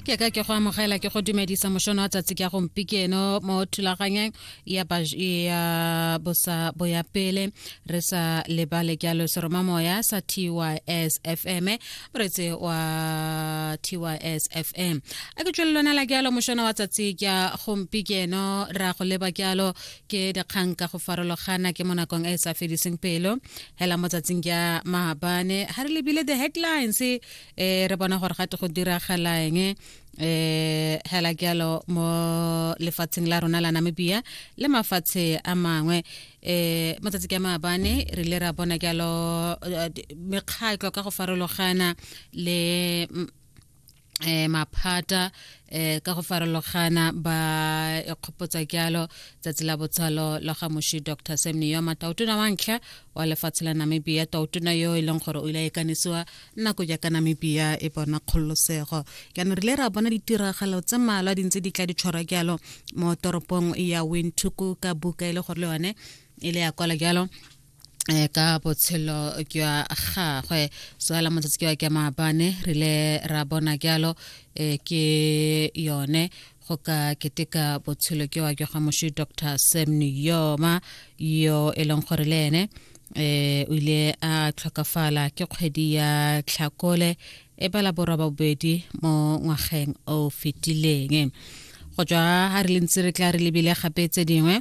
ke ka ke go amogela ke go dumedisa mošono wa tsatsi ka gompikeno mo thulaganyeng ya bosa boya pele re sa lebale jalo seromamoya sa tys fm moretse wa tys fm a ke tswele lona la jalo mošono wa tsatsi ka gompikeno ra go leba jalo ke dikgang ka go farologana ke mo nakong e e sa fediseng pelo hela mo tsatsing ka maabane ga re lebile the headlines eh re bona gore gate go diragalang um eh, hela ke yalo mo lefatsheng la rona la namibia le mafatshe a mangwe eh matsatsi ke maabane re le ra bona ke yalo eh, mekgatlo ka go farologana le mm, eh maphata eh ka go farologana ba kgopotsa kyalo tsatsi la botshalo la ga moshi dr semni yo matautuna wa ntlha wa lefatshe la namibia tautuna yo e leng gore o ile a ikanisiwa nako jaaka namibia e bona kgololosego jaanong re ile ra bona ditiragalo tse malwa di ntse di tla di tshwarwa jalo mo toropong ya winthuku ka buka e le gore le yone e le ya kwala jalo eh, ka botshelo jwa gagwe so ala motsatsi ke wa ke maabane re ile ra bona jalo eh, ke yone go ka keteka botshelo ke wa ke ga moši dr sam niyoma yo e leng gore le ene eh o ile a tlhokafala ke kgwedi ya tlhakole e bala borwa ba bobedi mo ngwageng o fetileng go tswa ga re le ntse re tla re lebile gape tse dingwe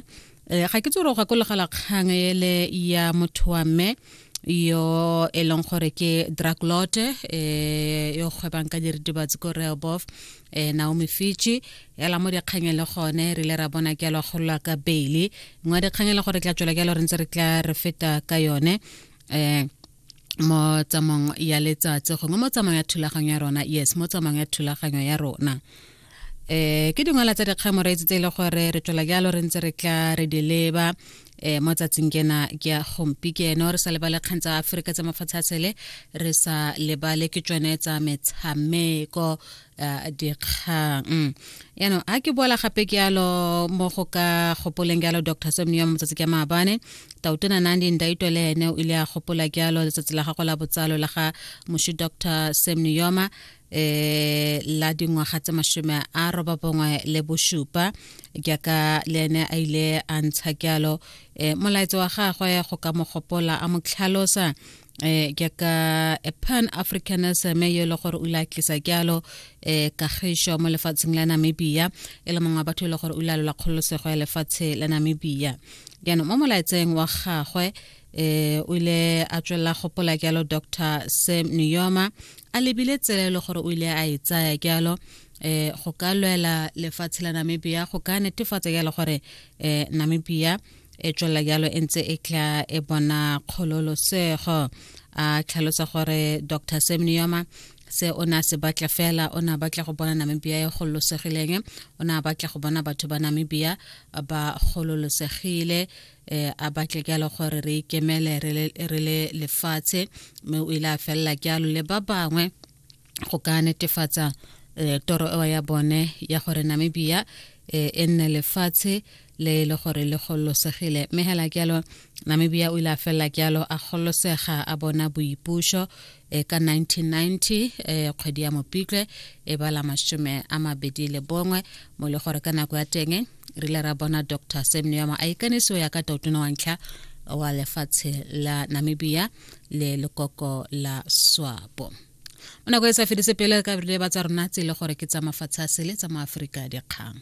Eh, ga ke tsoro gakologela kgang ele ya motho wa mme yo e leng gore ke draglote um eh, yo kgwebang ka diritibatsi ko rehobof um eh, naomi fiji ela mo dikgang e le gone re ile ra bona ke alo golola ka baile nngwe ya dikgang e le gore tla tswela ke alo re ntse re tla re feta ka yone um mo tsamong ya letsatsi gongwe mo tsamong ya thulaganyo ya rona yes mo tsamong ya thulaganyo ya rona eh ke dingwala tsa dikgang moreetsi tse e le gore re tswela jalo re ntse re tla re di leba eh mo tsatsing kena ke ya gompi ke ene re sa lebale kgang tsa aforika tsa mafatshe a tshele re sa lebale ke tsone tsa metshameko eh, dikgang mm. yaanong a ke boela gape ke yalo mo go ka gopoleng yalo dr semneo mo motsatsi ke maabane tautona nandi ndaito le ene o ile a gopola ke yalo letsatsi la gago la botsalo la ga moshi dr semneyoma eh la dingwaga tse mashome a roba bongwe le bosupa jaaka le ene a ile a ntsha jalo eh molaetso wa gagwe go ka mo gopola a mo tlhalosa eh jaaka a pan africanism yo le gore o ile a tlisa jalo eh kagišo mo lefatsheng la namibia e le mongwe wa batho e le gore o ile a lola kgololosego ya lefatshe la namibia jaanong mo molaetseng wa gagwe eh o ile a tswelela gopola jalo dr sam niyoma a lebile tsela e le gore o ile a e tsaya jalo eh go ka lwela lefatshe la namibia go ka netefatsa jalo gore eh namibia e tswelela jalo e ntse e tla e bona kgololosego a tlhalosa gore dr sam niyoma se o ne a se batla fela o ne a batla go bona namibia e gololosegileng o ne a batla go bona batho ba namibia ba gololosegile eh a batle ke le gore re ikemele re le lefatshe mme o ile a felela ke alo le ba bangwe go ka netefatsa eh, toro eo ya bone ya gore namibia eh, e nne lefatshe le e le gore le gololosegile mme hela ke alo namibia o ile a felela ke alo a gololosega a bona boipuso e ka 1990 e kgwedi ya mopitlwe e bala masome a mabedi le bongwe mo le gore ka nako ya teng re ile ra bona dr semneoma a ikanisiwa ya ka tautona wa ntlha wa lefatshe la namibia le lekoko la swapo mo nako e sa fedise pele ka ba tsa rona tse e le gore ke tsa mafatshe a sele tsa maaforika dikgang